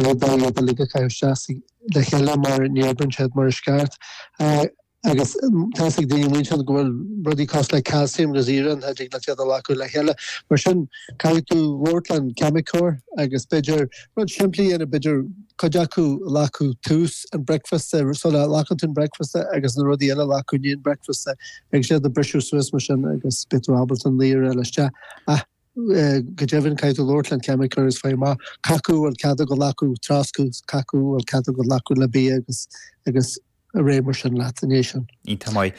Ní thig leat iad uilig a chaitheamh síos le chéile mar ní oibríonn siad mar is ceart. Agus tá fhios ag daoine an oíche go bhfuil rudaí cosúil le calcium agus iarann nach dtig leat iad a ghlacadh le chéile. Mar sin caithfidh tú labhairt le an ceimiceoir agus b'fhéidir rud simplí a dhéanamh, b'fhéidir cuid acu a ghlacadh tús an bricfeasta, sula nglacann tú an bricfeasta agus na rudaí eile a ghlacadh i ndiaidh an bricfeasta agus iad a bhriseadh suas mar sin agus beidh tú ábalta an layer eile isteach. Go deimhin, caithfidh tú labhairt leis an ceimiceoir is fáil amach. Cacú a bhfuil cead a ghlacadh ag troscadh, cacú a bhfuil cead a ghlacadh le bia agus agus ar aghaidh mar sin leat an é sin. Iontach maith.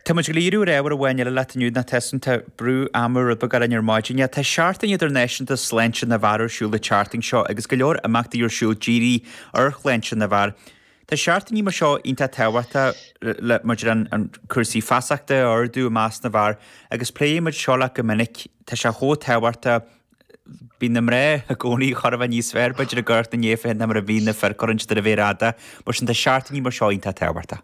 Tá muid ag gabháil a dhíriú ar ábhar amháin eile leat inniu, nó tá 's agam tá brú ama rud beag orainn ar maidin. Yeah, tá Seachtain Idirnáisiúnta Sláinte na bhFear ar siúl an tseachtain seo agus go leor imeachtaí ar siúl dírithe ar shláinte na bhfear. Tá seachtainí mar seo iontach tábhachtach le maidir le cúrsaí feasachta a ardú i measc na bhfear agus pléann muid seo leat go minic, tá sé chomh tábhachtach. Bíonn na mná i gcónaí chor a bheith níos fearr b'fhéidir ag amharc ina ndiaidh féin ná mar a bhíonn na fir cuireann siad ar an mhéar fhada, mar sin tá seachtainí mar seo iontach tábhachtach.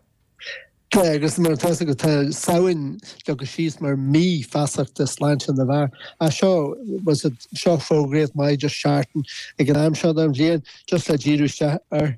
Tá, agus mar atá 's agat tá Samhain leagtha síos mar mí feasachta sláinte na bhfear. Agus seo, bhfuil 's agat, seo fógraíocht maith just seachtain ag an am seo den bhliain just le díriú isteach ar.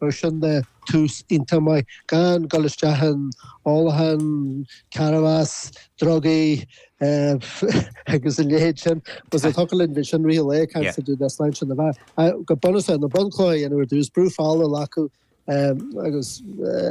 Mar sin de, tús iontach maith gan dul isteach in ólachán, cannabas, drugaí agus a leithéid sin. Bhuel, thiocfadh linn a bheith ansin i rith an lae ag caint fá dtaobh de sláinte na bhfear. Go bunúsach, na bunchlocha a dhéanamh ar dtús, brú fola a ghlacadh agus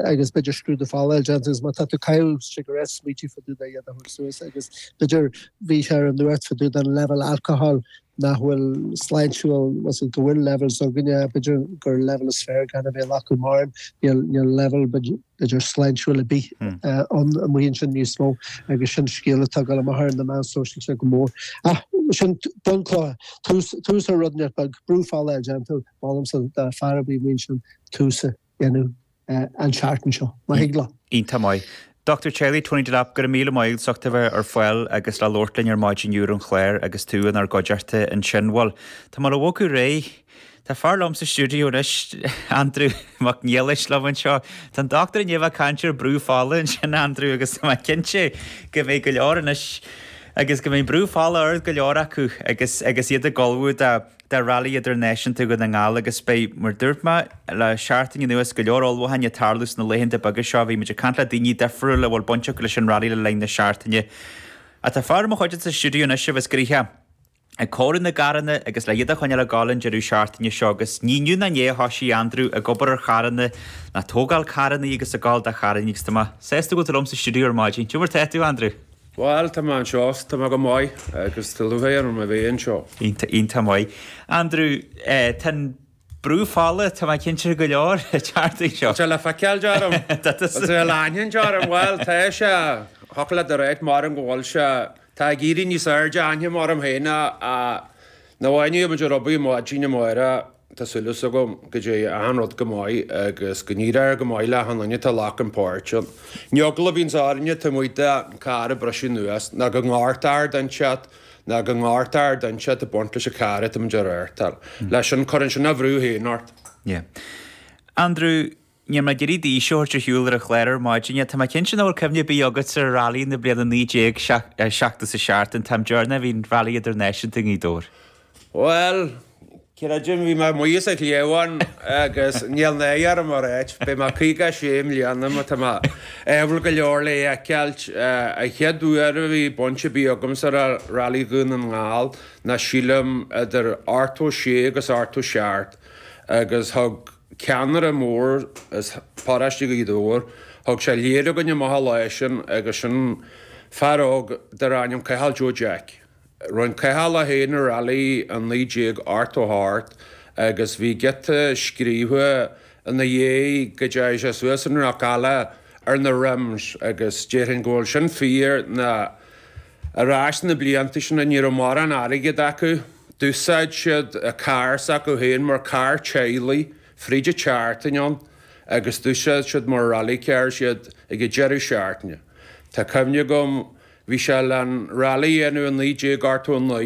agus b'fhéidir scrúdú fola a dhéanamh agus má tá tú ag caitheamh cigarettes smaoitigh fá dtaobh de iad a thabhairt suas agus b'fhéidir bhí sé ar an nuacht fá dtaobh den leibhéal alcohol nach bhfuil sláintiúil agus go bhfuil levels againne, b'fhéidir gur leibhéal is fearr gan a bheith á ghlacadh mar, níl leibhéal b'fhéidir sláintiúil ar bith ann amuigh ansin níos mó agus sin scéal atá ag gabháil amach ar na meáin sóisialta go mór. Ach sin bunchloch, tús ar rud inteacht beag, brú fola a dhéanamh, molaimse, do fear ar bith amuigh ansin tús a. dhéanamh an seachtain seo, ma thig leat. Iontach maith. Dochtúir teaghlaigh, Tony Delap, go raibh míle maith agat as ucht a bheith ar fáil agus le labhairt linn ar maidin ar an chlár agus tú inár gcuideachta ansin. Bhuel, tá mé ag bogadh ar aghaidh. Tá fear liom sa stiúideo anois, Andrew Mac Niallais liom anseo. Tá an dochtúir i ndiaidh a bheith ag caint ar brú fola ansin, Andrew, agus tá mé cinnte go mbeidh go leor anois agus go mbeidh brú fola ard go leor acu agus agus iad ag ullmhú do do rally idirnáisiúnta Dhún na nGall agus beidh, mar dúirt mé, le seachtain anuas go leor ullmhúcháin ag tarlú sna laethanta beaga seo bhí muid ag caint le daoine difriúil a bhfuil baint acu leis an rally le linn na seachtaine ach tá fear i mo chuideachta sa stiúideo anois a bheas gnoitheach ag cóiriú na gcarranna agus le iad a choinneáil ag gabháil an deireadh seachtaine seo agus ní inniu ná inné a thosaigh Andrew ag obair ar charranna nó ag tógáil carranna agus ag gabháil de charranna agus tá mé sásta go bhfuil tú liom sa stiúideo ar maidin, cad é mar tá tú Andrew? Bhal, tá mé anseo. Tá mé go maith agus tá lúcháir orm a bheith anseo. Iontach, iontach maith. Andrew, tá an brú fola, tá mé cinnte, go leor ag teacht ag seo. Tá sé le feiceáil orm. Tá sé le aithint orm. Bhal, tá sé. Thiocfadh leat a ráit, maram, go bhfuil sé. Tá ag éirí níos airde inniu orm féin ná a bhí nuair a rugadh Máirtín ná Máire. Tá súil is agam go dté achan rud go maith agus go n-éireoidh go maith le achan duine atá ag glacadh páirt ann. An eagla a bhíonns orainne taobh amuigh de an carr ag briseadh anuas ná go ngortaíthear duine inteacht ná go ngortaíthear duine inteacht ag baint leis an carr atá muid a reáchtáil. Leis sin cuireann sin a bhrú féin ort. Yeah. Andrew, Níl mé ag iarraidh d'aois a thabhairt ar shiúl ar an chlár ar maidin é. Tá mé cinnte nach bhfuil cuimhne ar bith agat ar Rally na bliana 1977, an t-am deireanach a bhí an Rally Idirnáisiúnta i nGaoth Dobhair. Bhuel, creidim bhí mé amuigh as an chliabhán agus níl náire orm a ráit, beidh mé 56 i mbliana má tá mé ádhúil go leor le fheiceáilt. An chéad uair a bhí baint ar bith agamsa le Rally Dhún na nGall ná sílim idir 86 agus 87 agus thug, ceannaire mór as paróiste Ghaoth Dobhair. Thug sé lear againn amach an lá sin agus sin fear óg darbh ainm Cathal Joe Jeaic. Rinn Cathal é féin i Rally 1988 agus bhí giota scríobhtha ina dhéidh go dteachaidh sé suas an Cnoc Alla ar na rims agus déarfainn go bhfuil sin fíor na Ar ais sna blianta sin ní raibh mórán airgead acu. D'úsáid siad carr s'acu féin mar carr teaghlaigh fríd an tseachtain ann agus d'úsáid siad mar rally cars iad ag an deireadh seachtaine. Tá cuimhne agam bhí sé le an rally a dhéanamh i 1989.